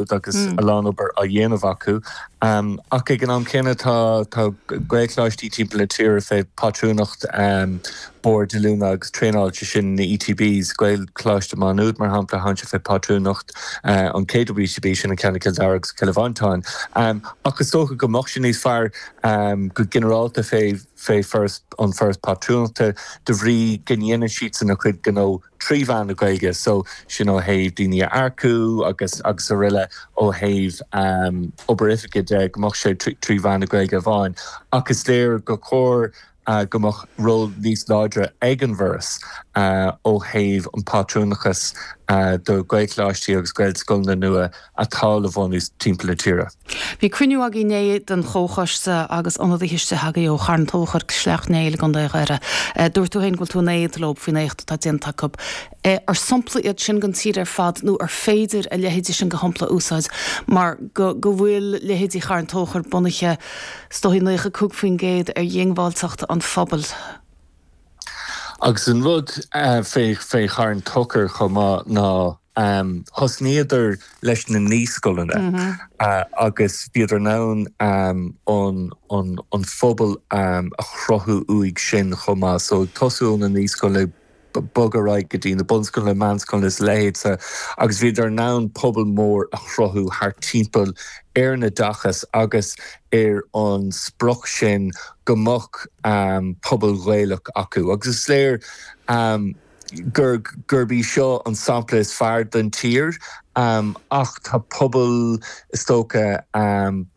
agus a lán obair á dhéanamh acu ach ag an am céanna tá Gaelcholáistí timpeall na tíre fé phátrúnacht boird oiliúna agus traenála, sé sin na ETBs. Gaelcholáiste Má Nuad mar shampla, thagann sé fé phátrúnacht an KWETB, sin an ceann i Cill Dara agus Cill Mhantáin, ach is dócha go mbeadh sé níos fearr go ginearálta fé an foras pátrúnachta de bhrí go ndéanann siadsan a gcuid gnó. trí mheán na Gaeilge so sin ó thaobh daoine a earcú agus agus aroile ó thaobh obair oifige de go mbeadh sé trí mheán na Gaeilge amháin ach is léir gur chóir go mbeadh ról níos láidre ag an bhForas ó thaobh an phátrúnachais do Ghaelcholáistí agus Gaelscoileanna nua atá le bunú timpeall na tíre. Bhí cruinniú againn inné den chomhchoiste agus ionadaithe istigh againn ó Charn Tóchair, Sleacht Néill i gContae Dhoire. Dúirt tú féin go bhfuil tú in éad leo faoin éacht atá déanta acu. An sompla iad sin don tír ar fad nó an féidir a leithéidí sin de shompla a úsáid mar go bhfuil leithéidí Charn Tóchair bunaithe is dóigh 95% ar dhiongbháilteacht an phobail? Agus an rud fé Charn Tóchair chomh maith ná thosnaíodar leis na naíscoileanna agus bhíodar in ann an pobal a chruthú uaidh sin chomh maith. So ag tosú ó na naíscoileanna ag bogadh ar aghaidh go dtí na bunscoileanna, meánscoileanna is a leithéidse agus bhíodar in ann pobal mór a chruthú thart timpeall ar an oideachas agus ar an sprioc sin go mbeadh pobal Gaelach acu agus is léir gurb í seo an sampla is fearr don tír ach tá pobal, is dócha,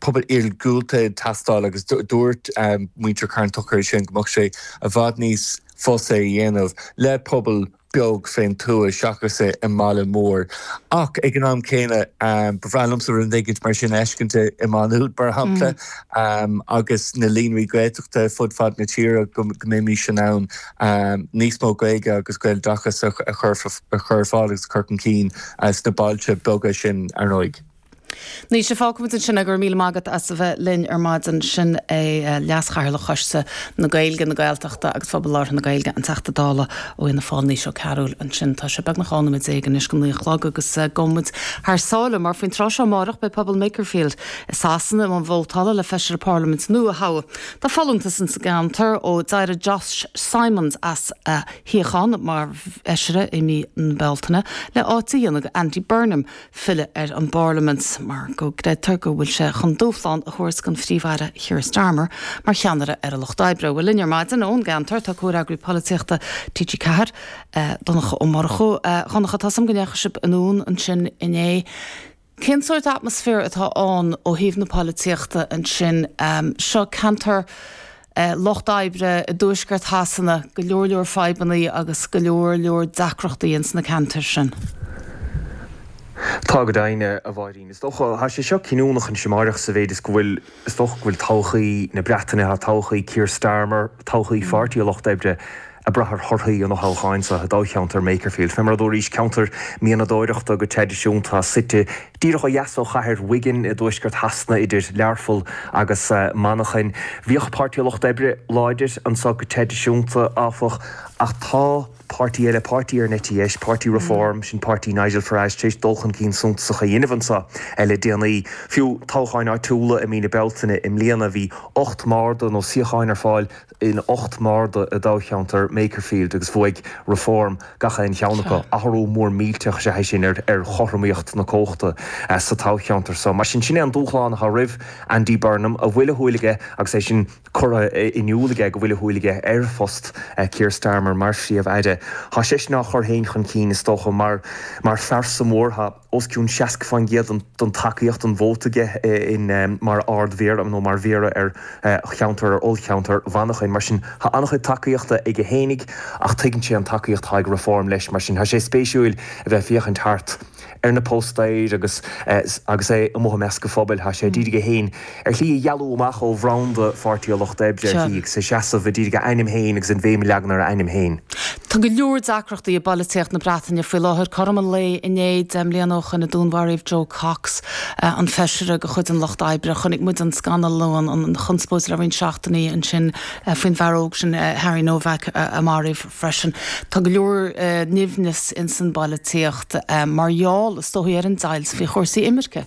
pobal iargúlta ag teastáil agus dúirt muintir Charn Tóchair é sin, go mbeadh sé i bhfad níos fusa é a dhéanamh le pobal beag fén tuaith seachas i mbaile mór. Ach ag an am céanna ba bhreá liomsa rud éigint mar sin a fheiscint i Má Nuad mar shampla agus na líonraí Gaeltachta fud fad na tíre, go mbeimís in ann níos mó Gaeilge agus Gaeloideachas a chur ar fáil agus a chur chun cinn sna bailte beaga sin ar ndóigh. Naoise, fágfaimid ansin é. Go raibh míle maith agat as a bheith linn ar maidin. Sin é Leas-Chathaoirleach Choiste na Gaeilge, na Gaeltachta agus Phobal Labhartha na Gaeilge, an Teachta Dála ó Fhianna Fáil, Naoise Ó Cearúil ansin. Tá sé beagnach 12 noiméad anois go naoi a chlog agus gabhfaidh muid thar sáile mar faoin tráth seo amárach beidh pobal Makerfield i Sasana i mbun vótála le Feisire Parlaiminte nua a thoghadh. Tá folúntas ins an gceantar ó d'éirigh Josh Simons as a shuíochán mar fheisire i mí na Bealtaine le áit a dhéanamh do Andy Burnham, filleadh ar an bParlaimint mar go gcreidtear go bhfuil sé chun dúshlán a thabhairt don Phríomh-Aire Keir Starmer mar cheannaire ar an Lucht Oibre. Bhuel, linn ar maidin ón gceantar tá comhfhreagraí polaitíochta TG4, Donncha Ó Murchú. Dhonncha, tá a fhios agam go ndeachaigh sibh anonn ansin inné. Cén sórt atmaisféar atá ann ó thaobh na polaitíochta ansin? Seo ceantar lucht oibre i dtuaisceart Shasana go leor leor fadhbanna agus go leor leor deacrachtaí ins na ceantair sin. Tá go deimhin, a Mháirín. Is dócha, tá sé seo cinniúnach anseo amáireach sa mhéid is go bhfuil, is dócha go bhfuil todhchaí na Breataine, tá todhchaí Keir Starmer, todhchaí Pháirtí an Lucht Oibre ag brath ar thorthaí an fhothoghcháin seo i dtoghcheantar Makerfield. Fé mar a dúraís, ceantar mianadóireachta go traidisiúnta, suite Díreach ó dheas ó chathair Wigan i dtuaisceart Shasana idir Learpholl agus Manchain. Bhíodh Páirtí an Lucht Oibre láidir anseo go traidisiúnta, áfach, ach tá páirtí eile, páirtí ar an eite dheis, páirtí Reform, sin páirtí Nigel Farage, tar éis dul chun cinn suntasach a dhéanamh anseo le déanaí. Fiú toghcháin áitiúla i mí na Bealtaine i mbliana bhí ocht mbarda nó suíochán ar fáil in ocht mbarda i dtoghcheantar Makerfield agus bhuaigh Reform gach aon cheann acu. Athrú mór millteach is ea é sin ar chothromaíocht na cumhachta sa toghcheantar seo. Mar sin, sin é an dúshlán atá roimh Andy Burnham, a bhfuil a shúil aige agus é sin curtha in iúl aige go bhfuil a shúil aige ar phost Keir Starmer mar Phríomh-Aire. Tá seisean á chur féin chun cinn, is dócha, mar phearsa mhór. Tá. os cionn 60% den tacaíocht, an vóta, aige in mar Ard-Mhéara nó mar Mhéara ar cheantar, ar ollcheantar, Mhanchain. Mar sin, tá an-chuid tacaíochta aige fhéinig ach tuigeann sé an tacaíocht atá ag Reform leis. Mar sin, tá sé spéisiúil a bheith ag féachaint thart ar na póstaeir agus agus é amuigh i measc an phobail. Tá sé ag iarraidh é féin. Ar shlí a dhealú amach ó bhranda Pháirtí an Lucht Oibre, ar shlí, agus a seasamh i dtír ag a ainm féin agus an bhéim a leagan ar a ainm féin. Tá go leor deacrachtaí i bpolaitíocht na Breataine faoi láthair. Cothrom an lae inné, deich mbliana ó shoin a dúnmharaíodh Jo Cox, an feisire de chuid an Lucht Oibre. Chonaic muid an scannal nó an chonspóid le roinnt seachtainí ansin faoin bhfear óg sin Harry Nowak a maraíodh freisin. Tá go leor nimhnis ins an bpolaitíocht mar gheall is dóigh ar an deighilt faoi chúrsaí imirce.